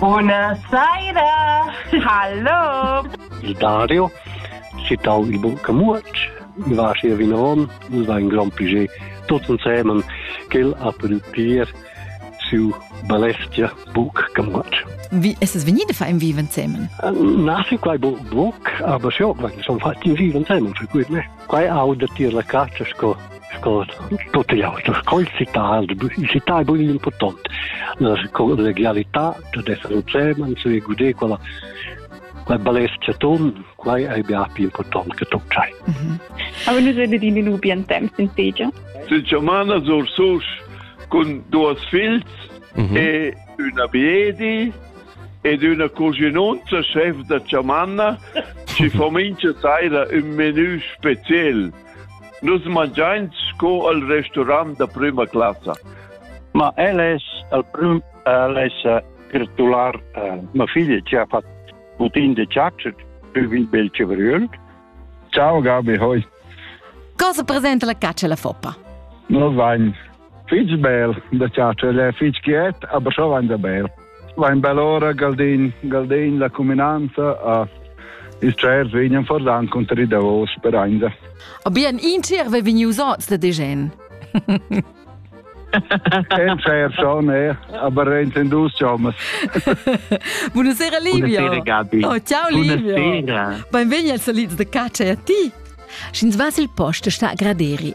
Buna saira! Hallo! Il Dario, citau il bun Camuotsch, i va sia vinavon, nus va in grand piger tots ensemen, quel ha pudü tier siu balestia buc Camuotsch. Wie ist es venide für ein Viven zusammen? Nach quai buc, aber schon, weil schon fast in Viven zusammen, für gut, ne? Quai auda tier la caccia sco sco tut ei auto scol citar citar bun impurtant la legalità da essere un chairman su e gude quella quai balest chaton quai ei bia più important che tu sai Aber nu rede di nu bien temps in tegia Sincermana sur sus cun duas fils e una biedi ed üna cuginunza schef da chamanna chi fa mincha saira ün menü speciel. Nus mangiains sco al restaurant da prüma classa. Ma el es al prüm el es gratular uh, ma figlia ci ha fatto putin de ciaccio più il bel cevröl ciao Gabi hoi cosa presenta la caccia la foppa? Noi vain fitg bel da chatscher, è fitg quiet, aber schon vain da bel. Vain bel ora Galdin, Galdin la cuminanza a ils tschers vegnan fordan conter i davos per ainda. Aber ein inter ve vegnius ots da degen. En fair schon, eh, aber in dus Jomas. Buonasera Livio. Buonasera Gabi. Oh, ciao Livio. Buonasera. Benvegni al Saliz de Caccia e a ti. Sch'ins vas il posto sta a graderi.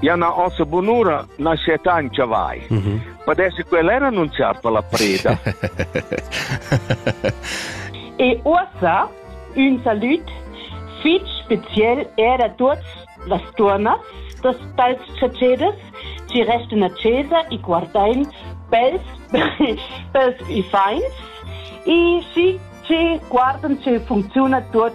Ja na ossa bunura nascetta in chavai. Mm -hmm. Padesse quella era annunziar per la preda. e uossa un salut fitch spezial era tuots las turnas das tals chacedas ci resten a cesa i guardain pels pels i fains e si ci guardan ce funziona tuot